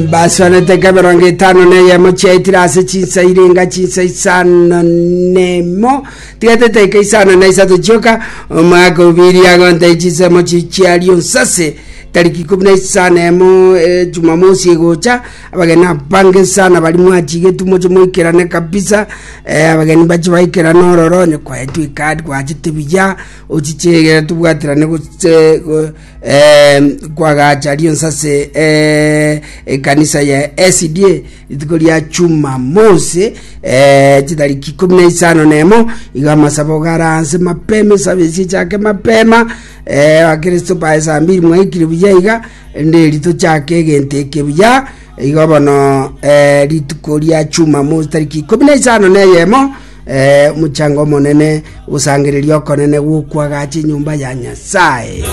baswanete keberongo etano na eyemo chiaetire ase chinsa irenga chinsa isano nemo tigatete eke isano na isato chioka omwaka obiri agontai chinsemo chichiario nsase tariki ikumi na isano emo eh, jumamosi egocha abageni abange sana bari mwachigetu moche moikerane kabisa eh, abageni bache baikerane ororo onye kwaetu ikadi gwachete buya ochichegera tobwaterane gose go- Eh, kwagacha rionsi ase eh, ekanisa ya SDA rituko ria Jumamosi eh, chitariki ikumi na isano na emo iga amasabo garanse mapema esabe esi echake mapema eh, bakristo bae saa mbiri mwaikire buya iga rinde rito chake egento eke buya iga bono eh, rituko ria Jumamosi tariki ikumi na isano na eyemo Ee, mochango omonene, gosangereria okonene gwokwagacha enyomba ya Nyasae.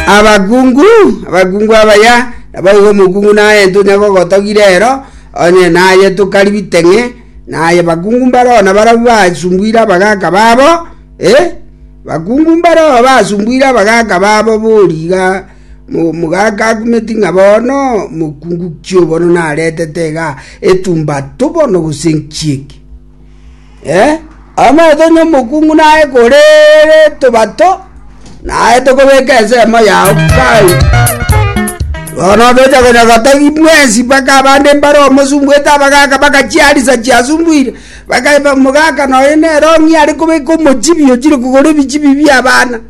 abakungu abakungu abaya nabaiga omokungu naye ntonya gogotogire ero onye naye tokari biteng'e naye bakungu mbaroo na barabu basumbuire abagaka babo e bakungu mbaroo basumbuire abagaka babo boriga Omogaka akumeti ng'a bono mokungu ki'obono naretete iga etumba tobono gose enchieke. Omanyete onye omokungu naye kore tobato, naye tokobeka ensemo yao kai. Bono obeche konya gotagi mwensi mpaka abande mbare omosumbwete abagaka bagachiarisa chiasumbuire, bakaeba omogaka noyo nere ong'ia are kobeka omochibi ochire kogora ebichibi bi'abana.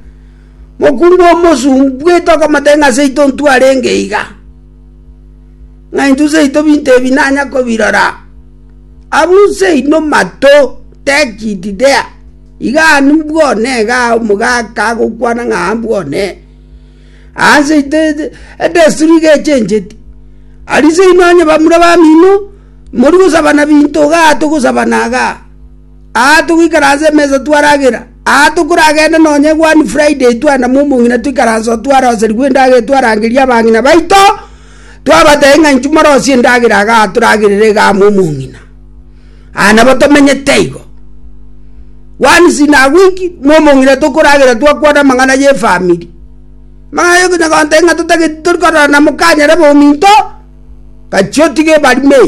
Mokuru nomosumba, bwetokomotebia ng'a seito intwe arenge iga, ng'a intwe seito binto ebi nanya kobirora. Abwo seino mato, take it there, iga ani bwone iga omogaka agokwana ng'a aa bwone. Aa seito edesturi iga echencheti. Aria seino onye bamura bamino, mori gosabana binto igaa togosabana igaa. Aa togoikara ase emesa twaragera, aa tokoragende nonya One Friday twanamwa omong'ina toikaranse oo twaroserigwe endagera twarangeria abang'ina baito, twabatebia ng'a inchuo morosie endagera iga atoragerere iga amo omong'ina. Aa nabo tomenyete igo. Once in a week mo omong'ina tokoragera twakwana amang'ana ye efamiri. Amang'ana ye okonya gontebia ng'a totageti tori kororana mokanyare bominto, gachia otige ebari me.